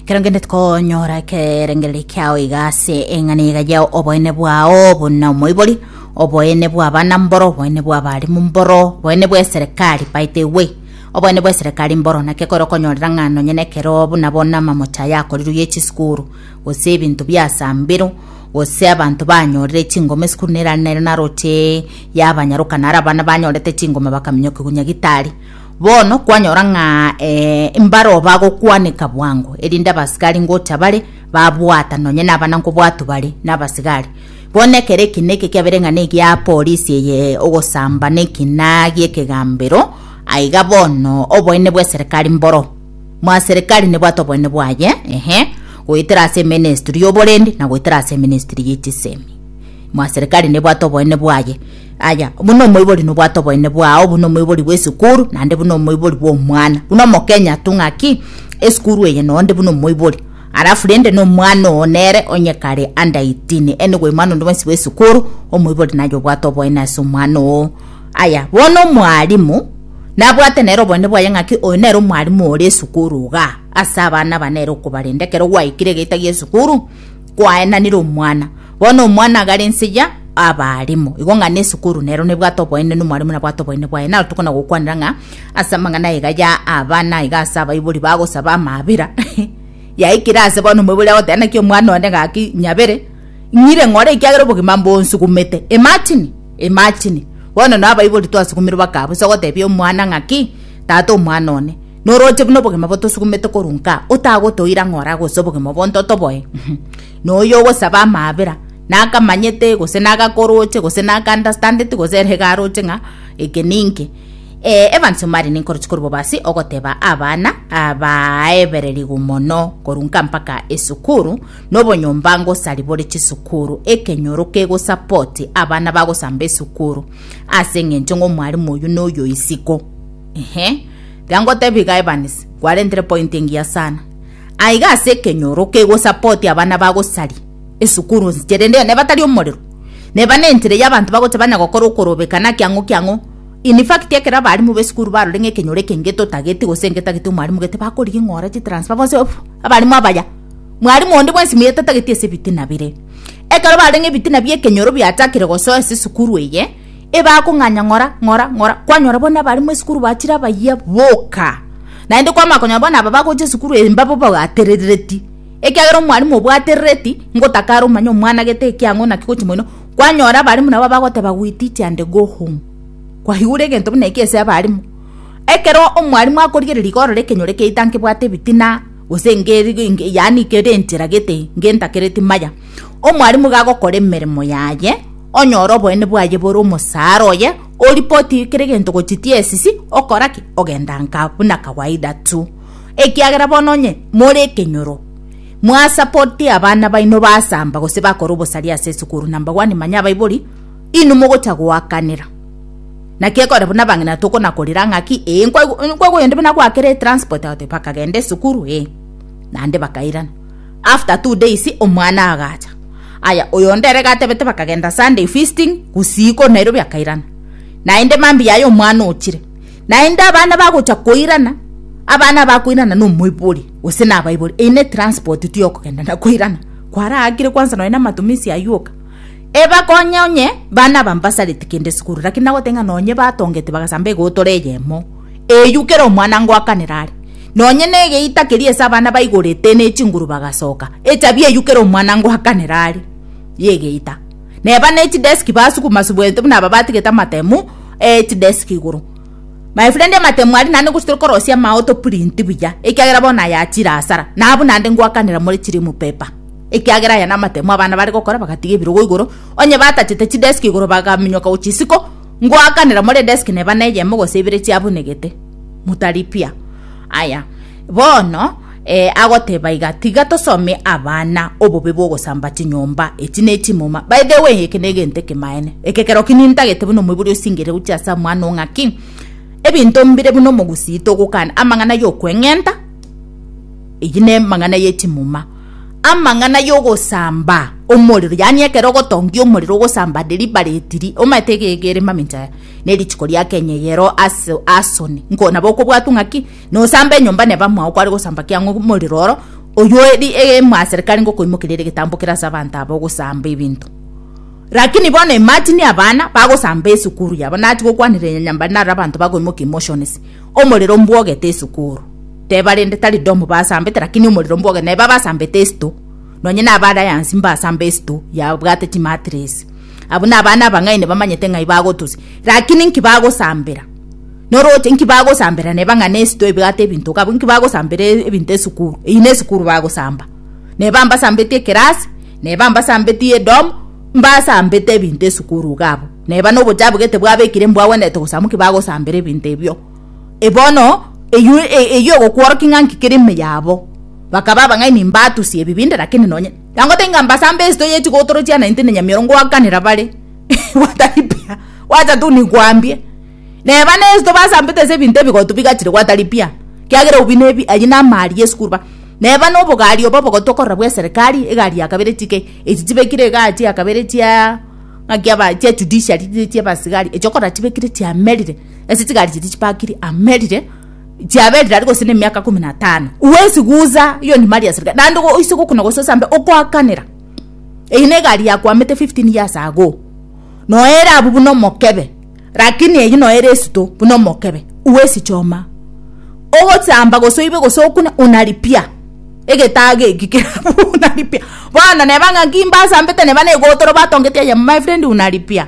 kero ngende tikonyora ekerengereri kiao iga ase eng'ana iga yao oboene bwao buna omoibori oboene bwa abana mboro oboene bwa abarimu mboro oboene bwa eserekari by the way oboene bwa eserekari mboro naki ekero okonyorera ng'a nonye na ekero buna bono amamochi aya akorirwe ye chisukuru gose ebinto bia saa mbero gose abanto banyorire chingoma esukuru nera nere naroche yabanyaroka naro abana banyorete chingoma bakaminyokigwa nyagitari Bono kwanyora ng'a eh, mbaro bagokwaneka bwango, erinde abasigari ngocha bare babwata nonye nabana nkobwatu bare nabasigari. Bono ekero eki neke kiabere ng'a negia polisi eye ogosamba nekina giekegambero, aiga bono oboene bw'eserekari mboro. Mwaserekari nebwate oboene bwaye, ehe, goetera ase eministri y'oborindi na goetera ase eministri ye chisemi. Mwaserekari nebwate oboene bwaye. Yaya, buna omoibori nobwate oboyene bwao buna omoibori bw'esukuru, naende buna omoibori bw'omwana. Buna omokenya tu ng'aki, esukuru eye noo nde buna omoibori. Alafu rende na omwana oo nere onye kare under 18, ere nigo omwana onde bwensi bw'esukuru, omoibori naye obwate oboyene ase omwana oo. Yaya, bono omwalimu, nabwate nere oboyene bwaye ng'aki oyo nere omwalimu ore esukuru igaa, ase abana aba nere okobarenda ekero gwaikire egeita gi'esukuru, kwaenanire omwana. Bono omwana agare ense ya abaarimo. Igo ng'a nesukuru nero nebwate oboene na omwarimo nabwate oboene bwaye. Naro tokona gokwanera ng'a ase amang'ana aiga ya abana iga ase abaibori bagosaba amaabera yaikire ase bono omoibori agoteba naki omwana one gaki nyabere ng'ire ng'ore ekiagera obogima mbonsugumete. Imagine imagine bono nabo abaibori twasugumirwe bakaba bose ogotebia omwana ng'aki tata omwana one. Noroche buna obogima botosugumete korwa nkaa, otagotoira ng'a oragose obogima bonto otoboe. Noyo ogosaba amaabera, nakamanyete, gose nagakoroche, gose nakaandastandeti, gose ere garoche ng'a eke ninki. Eh, Evans Omari ninkoroche korwa bobasi ogoteba abana abaebererigwe mono korwa nka mpaka esukuru, nobonyomba ngosari bore chisukuru, ekenyoro kegosapoti abana bagosamba esukuru, ase eng'encho ng'a omwarimu oyio noyo isiko. Inhe, tiga ngotebi iga Evans, kwarentire point engiya sana. Aiga ase ekenyoro kegosupport abana bagosaria esukuru nsi chere nde nebatari omorero. Neba ne entire ya abanto bagocha banya gokora okorobeka naki ang'o ki ang'o. In fact ekero abarimu b'esukuru barore ng'a ekenyoro eke ngetotageti gose ngetageti omwarimu gete bakorigia ng'a ore chitransfer bonsi off abarimu abaya. Mwarimu onde bwensi muya etatageti ase ebitina bire. Ekero barenge ebitina bia ekenyoro biachakire gosoa ase esukuru eye, ebakong'anya ng'ora, ng'ora, ng'ora, kwanyora bono abare mo esukuru bachire abayia boka. Naende kwamanya konyora bono aba bagocha esukuru eye mbabo bagaterereti, ekiagera omwarimu obwaterereti ngotakara omanye omwana gete eki ang'o naki gochi moino, kwanyora abarimu nabo abagoteba we teach and go home. Kwaigure egento buna eki ase abarimu. Ekero omwarimu akorigereria iga orore ekenyoro kiaito nkebwate ebitina, gose nge yaani kere enchera gete ngentakereti maya. Omwalimu iga agokora emeremo yaye, onyore oboene bwaye bore omosaara oye, oripoti kera egento gochia TSC, okora ki? Ogenda nka buna kawaida tu. Ekiagera bono onye more ekenyoro, mwasapoti abana baino basamba gose bakora obosaria ase esukuru, number one, manya abaibori, inwe mogocha goakanera. Naki ekore buna abang'ina tokonakorera ng'aki, ee, nkwa- nkwa oyo onde buna gwakera etransport, agotebi bakagenda esukuru, ee, naende bakairana. After two days omwana agacha. Aya oyonde ere gatebete bakagenda Sunday feasting usiku Nairobi akairana. Naende mambi yaye omwana ochire. Naende abana bagocha koirana abana bakoirana no moibori ose na baibori ine transport tu yokogenda na koirana. Kwara akire kwanza noe na matumisi ayuoka. Eba konye onye bana bambasarete kende sukuru lakini nagotenga nonye batongete bagasamba egotore yemo. Eyio kera omwana ngoakanera are, nonye negeita keria ase abana baigorete ne chinguru bagasoka, echabi eyio kera omwana ngoakanera are yegeita. Neba ne chidesk basukuma subwente buna aba batigete amatemu e chidesk igoro. My friend amatemu aria naende ngochi torikorosia amao to print buya ekiagera bono aya achire asara. Nabwo naende ngoakanera more chirimu paper ekiagera aya namatemu abana bare gokora bagatiga ebirogo igoro onye batachete chidesk igoro bagaminyoka gochia isiko. Ngoakanera more desk neba neyemo gose ibere chiabunegete, mutaripia. Aya, bono eh, agoteba iga, tiga tosome abana obobe bw'ogosamba chinyomba, echi nechimuma. By the way, eke negento ekemaene, ekekero ki nintagete buna omoibori osingire gochia ase omwana oo ng'aki ebinto mbire buna omogusii togokana amang'ana yokweng'enta, eyi nemang'ana yechimuma. amang'ana y'ogosamba omorero, yaani ekero ogotongia omorero ogosamba deliberately ri, omanyete iga iga ere mamincha aya, na erituko ria Kenya eyeroo aso asoni, nko nabo okobwatwa ng'aki nosamba enyomba neba mwao kware gosamba kiang'o omorero oro oywo eri e mwaserikari ngokoimokeria ere egetambo kere ase abanto aba ogosamba ebinto. Rakini bono imagine abana bagosamba esukuru yabo, nachi gokwanera enyanya mbare naro abanto bakoimokia emotions, omorero mbwogete esukuru. Teba rende tari Domu basambete, lakini omorero mboge neba basambete esito. Nonye na abarayansi mbasamba esito yabwate chimatiresi. Abwo na abana abang'aini bamanyete ng'ai bagotusi, lakini nki bagosambera? Noroche nki bagosambera neba ng'a nesito ebwate ebinto gabo nki bagosambera ebinto esukuru. Eyi ne esukuru bagosamba. Neba mbasambeti ekerasi, neba mbasambeti edomu, mbasambete ebinto esukuru gabo. Neba nobochabu gete bwabekire mbwagwenerete gosamba nki bagosambera ebinto ebio. Bono eyio eyio ogokworokia ng'a nki kere ime yabo. Bakaba abang'aini mbatusia ebibinde lakini nonye nagotebia ng'a mbasa mbe esito ye chigotoro chiane intende nyamiorongo goakanera bare gwataripia gwacha tu nikwambie neba ne esito basambete ase ebinto ebigotu bigachire gwataripia kiagera obi ne ebi aywo namo aria esukuru ba neba na obogari obo obogotu okorora bwa eserekari egari ya kabere chike echi chibekire igaa chia kabere chiaa ng'aki aba chia judiciary chiabasigari echi okora chibekire chiamerire. ase chigari chiria chipakiri amerire chiaberire aria gose na emiaka kumi na tano gwesigusa hiyo ni mali ya serikali naende go- oise gokuna gose osambe okoakanera eye na egari yakwamete 15 years ago noere abwo buna omokebe lakini eyio noere esuto buna omokebe gwesichoma ogosamba gose oibe gose okune unalipia egetago eki kere abwo unalipia bono neba ng'a nki mbasambete neba na egotoro batongeti aye my friend unalipia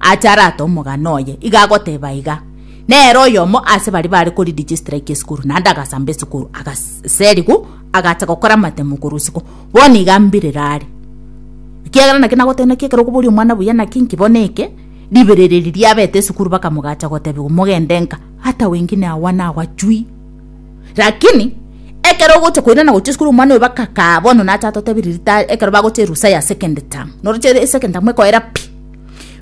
ache arate omogano oye, iga agoteba iga, Nere oyomo ase baria bare koridigistraki esukuru, naende agasamba esukuru, agaserigwa, agacha gokora amatemo korwa isiko. Bono iga mbirire are. Ekiagera naki nagotebia naki ekero okoboria omwana buya naki inki bono eke, ribere eri riabete esukuru bakamogacha gotebigwa, Mogende nka, hata wengine awa nawa chui. Lakini ekero ogocha koirana gochia esukuru omwana oyo bakakaa bono nacha atotebiri ritari ekero bagocha erusa ya second term noroche ere second term ekoera pi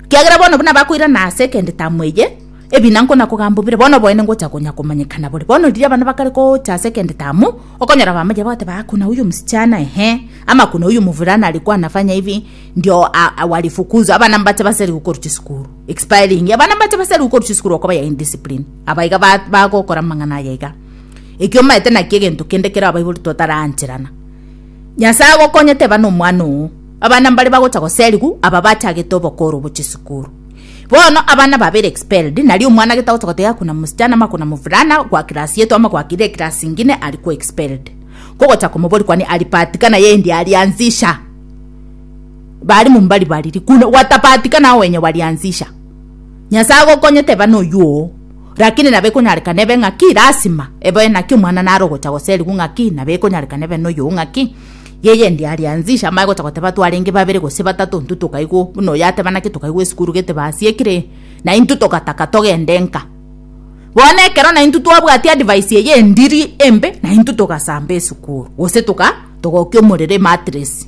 kiagera bono buna bakoirana ase second term eye ebina nkona kogamba bire bono oboene ngocha konya komanyekana bore bono riria abana bakare gocha second term okonyora bamanya bagoteba aa kuna huyu msichana ehe ama kuna huyu mvulana alikuwa anafanya hivi ndio a- a- walifukuzwa abana mbache baseri gokorochia esukuru Expiring. Abana mbache basari ukoru chisukuru okoba ya indiscipline. Abaiga bagokora mang'ana ayaiga. Ekio maete naki egento kende kero abaibori totarancherana. Nyasaye agokonye teba no mwana oo. Abana mbare bagocha goserigu aba bachagete obokoro obo chisukuru. Bono abana babere expelled nari omwana gete agocha gotega kuna musichana ama kuna mufulana gwa class yetu ama gwa kire class ingine ari ko expelled. Kogocha komobori kwani ari patikana yendi ari anzisha. Bari mumbari bariri kuna gwatapatika na owenye bariansisha. Nyasae agokonye teba noyuo oo. Rakini nabo ekonyarekana ebe ng'aki lasima eboe naki omwana nare ogocha goserigwa ng'aki nabo ekonyarekana ebe noyuo ng'aki yeye ndi ariansisha amae gocha goteba twarenge babere gose batato intwe tokaigwa buna oyo ateba naki tokaigwa esukuru gete basi ekire na intwe togataka togende nka. Bono ekero na intwe twabwati advice eye endiri embe na intwe togasamba esukuru gose toga togokia omorero ematress.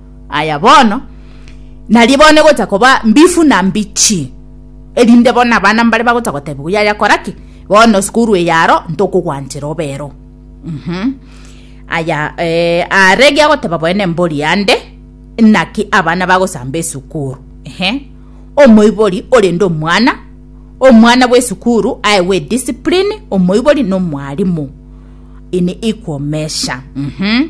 Aya bono, nario bono egocha koba mbifu na mbichi, erinde bono abana mbare bagocha gotebigwa, yaya kora ki? Bono sukuru eye aro ntokogwanchera obero. Mhm. Aya eh, are giagoteba boene mbori ande, naki abana bagosamba esukuru. Ehe. Omoibori orende omwana, omwana bw'esukuru aewe discipline, omoibori na omwarimu in equal measure. Mhm.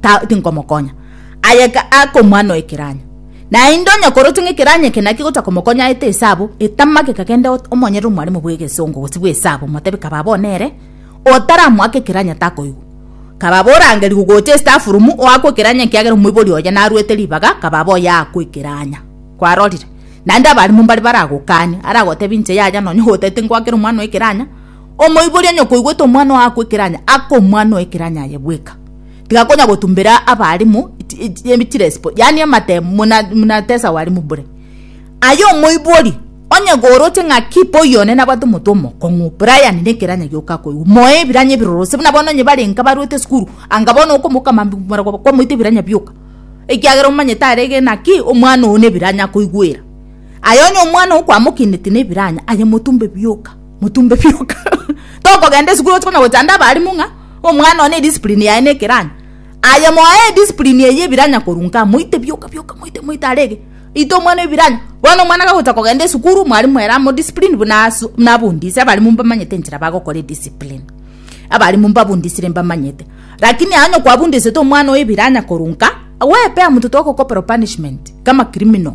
ta tinkomokonya, aye ga akomwana oekeranya. Naende onye korotwe ng'a ekeranya eke nakio gotakomokonya aete esabu, etama gekagenda ot omonyerere omwalimu bw'egesongo gose bw'esabu, omotebi kaba abwo nere otaramoake ekeranya takoigwa. Kaba abwo orangeri gogocha esitafurumu oakwe ekeranya ekiagera omoibori oye naruete ribaga kaba abwo oyeakwa ekeranya. Kwarorire? Naende abalimu mbare baragokanye, aragotebi inche yaya nonye otaete ngoakera omwana oekeranya, omoibori onye koigwete omwana oakwa ekeranya akomwana oekeranya aye bweka. tiga konya gotumbera abalimu chirespo yaani amate muna muna tesa abalimu bure aye omoibori onye goroche ng'aki mboyo one nabwate omoto omokong'u brian ne ekeranya gioka koigwa moe ebiranya ebiroro gose buna bono onye barenge abarwete esukuru anga bono okomokama mbu maragoba kwamoita ebiranya bioka ekiagera omanyete arege naki omwana oyo ne ebiranya akoigwera aye onye omwana oyo kwamokineti ne ebiranya aye motumbe bioka. Motumbe bioka. Tokogenda esukuru oche konya gochanda abalimu ng'a omwana one ediscipline yaye nekeranya. Aye moaye ediscipline eye ebiranya korwa nkaa moite bioka bioka moite moite arege ite omwana ebiranya. Bono omwana gagocha kogenda esukuru mwalimu ere amodiscipline buna asu buna abundise abalimu mbamanyete enchera bagokora ediscipline. Abalimu mbabundisire mbamanyete. Lakini onye kwabundisete omwana oye ebiranya korwa nka, gwepe amuntotwe agokopero punishment kama criminal.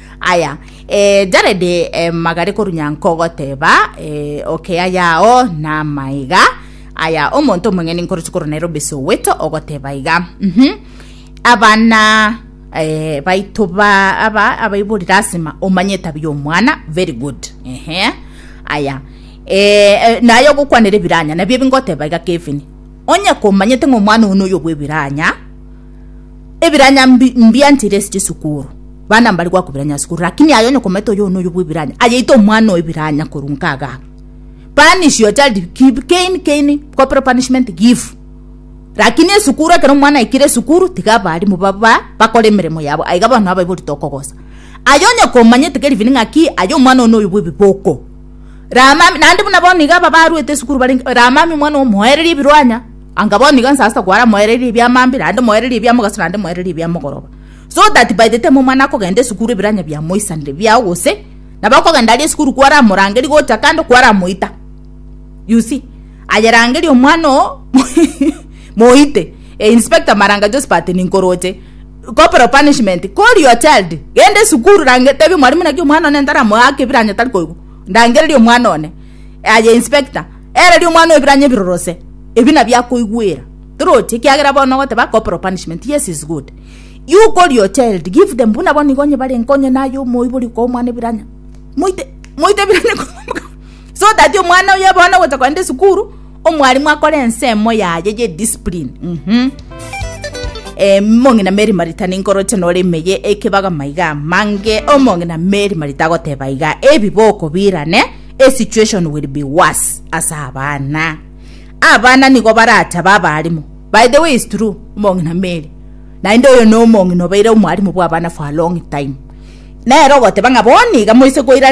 Aya, eh, Jaredi eh, magare korunyanko goteba, eh, okea yao na maiga. Aya, omonto omong'eni nkorochi korwa Nairobi Soweto ogoteba iga. Mhm. Abana eh, baito ba aba abaibori lasima omanye etabia omwana very good. Ehe. Aya. Eh, eh, naye ogokwanera ebiranya nabio ebingoteba iga Kevin. Onye komanyete ng'omwana ono oyo bwebiranya Ebiranya mbi mbianchire ase chisukuru, bana mbari goakwa ebiranya ase sukuru lakini aye onye okomanyete oyo noyo bwa ebiranya ayaite omwana oye ebiranya korwa nka igaa. Punish your child kib kein kein corporal punishment give lakini esukuru ekero omwana aikire esukuru tiga abalimu baba bakore emeremo yabo aiga bono abaiborete okogosa. Aye onye komanyete keri biri ng'aki aye omwana oyo noyo bwa ebiboko, rama naende buna bono iga aba baruete esukuru barenge rama omwana oyo moererie ebiruanya Anga bono iga nsaso kwara moererie ebiamambia naende moererie ebiamogaso naende moererie ebiamogoroba, so that by the time omwana akogenda esukuru ebiranya biamoisanire biao gose nabo akogenda aria esukuru kwaramorangeria gocha kando kwaramoita you see ayerangeria omwana oo moite eh, Inspector Maranga Josphat ninkoroche corporal punishment call your child genda esukuru range tebi mwalimu naki omwana one ntaramoake ebiranya tari koigwa ndangereria omwana one aye Inspector Ere ria omwana oebiranyo ebirorose, ebi nabio akoigwera. Toroche, ekiagera bono ogoteba corporal punishment, yes is good. You call your child, give them, buna bono igo onye barenge onye naye omoibori okoa omwana ebiranyo. Moite, moite ebiranyo komoka. So that omwana oye bono ogocha kogenda esukuru, omwalimu akore ensemo yaye ye discipline. Mhm. Eh, mong'ina Mary Marita ninkoroche nore emeye ekebaga maiga amange, omong'ina Mary Marita agoteba iga, ebiboko birane, A situation will be worse as abana. Abana nigo baratabe abarimu. By the way is true omong'ina Mary. Naende oyo no omong'ina obeire omwarimu bwa abana for a long time. Nero ogoteba ng'a bono iga moise koirania